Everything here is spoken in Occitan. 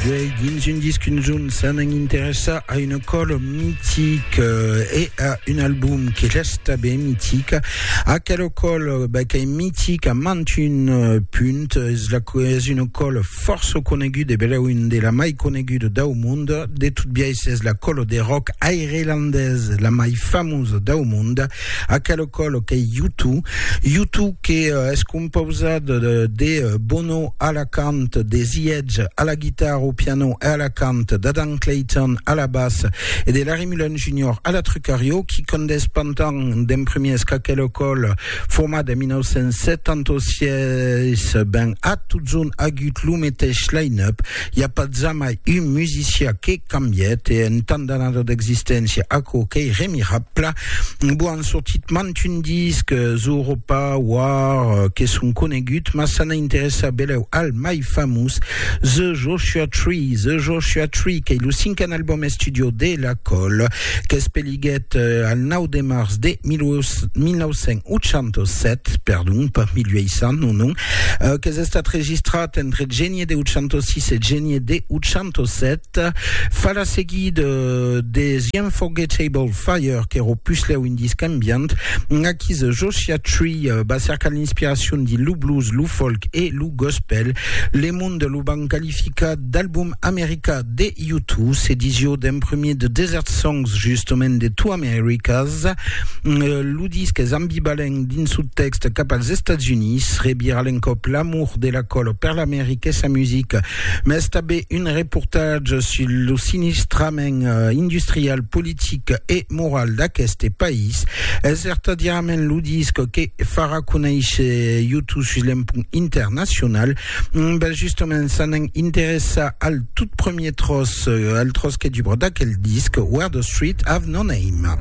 Duei dins un disc un zun s'anan interessar a una còla mitica e a un album que resta ben mitica. Aquela còla ben, qu'es mitica mant un punt, es, la, es una còla fòrça coneguda, bela un de la mai coneguda dau mond. De tot biais, es la còla de rock airlandesa la mai famosa dau mond. Aquelo còlo qu'ei Yutu, Yutu que es compausat de Bono a la cant, de The Edge a la guitarra, au piano e a la cant, d'Adam Clayton a la bas e de Larry Mullen Junior a la trucarió, qui condés pantan d'en primiers qu'aquelo còlo, format en 1976, ben a totson agut lo meteis line-up, i a pas jamai un musicià que. cambièt e en tant d'anada d'existéncia aquò qu'ei remirabla bo an sortit mantun disc Zooropa War que son conegut mas s'an interessa belèu al mai famós The Joshua Tree The Joshua Tree qu'ei lo cinquen album estudio de la Coll qu'es Naiguèt al 9 de març de 1987, perdon, pas 1800, non, non, euh, qu'es estat registrat entre genie de 806 e genie de 807, fa la seguida euh, de The Unforgettable Fire, qu'era o puslèu un disc ambient, aquí The Joshua Tree euh, va cercar l'inspiracion dins lo blues, lo folk e lo gospel, le monde lo van qualificar d'album americà De U Two, s'ediciò d'un premier de Desert Songs, justement de Two Americas. Lo disc es ambivalent dins su tèxt cap als Estats Units, rebira l'encòp l'amor de la còlo per l'America e sa musica, mas tanben un reportatge sul lo sinistrament industrial, politic e moral d'aqueste país. Es vertadièrament lo disc que farà conéisher U Two sus l'empont internacional. Mm, ben justement, ça n'en interessa al tout premier tros, euh, al tros que du broda quel disc, Where the Street Have No Name.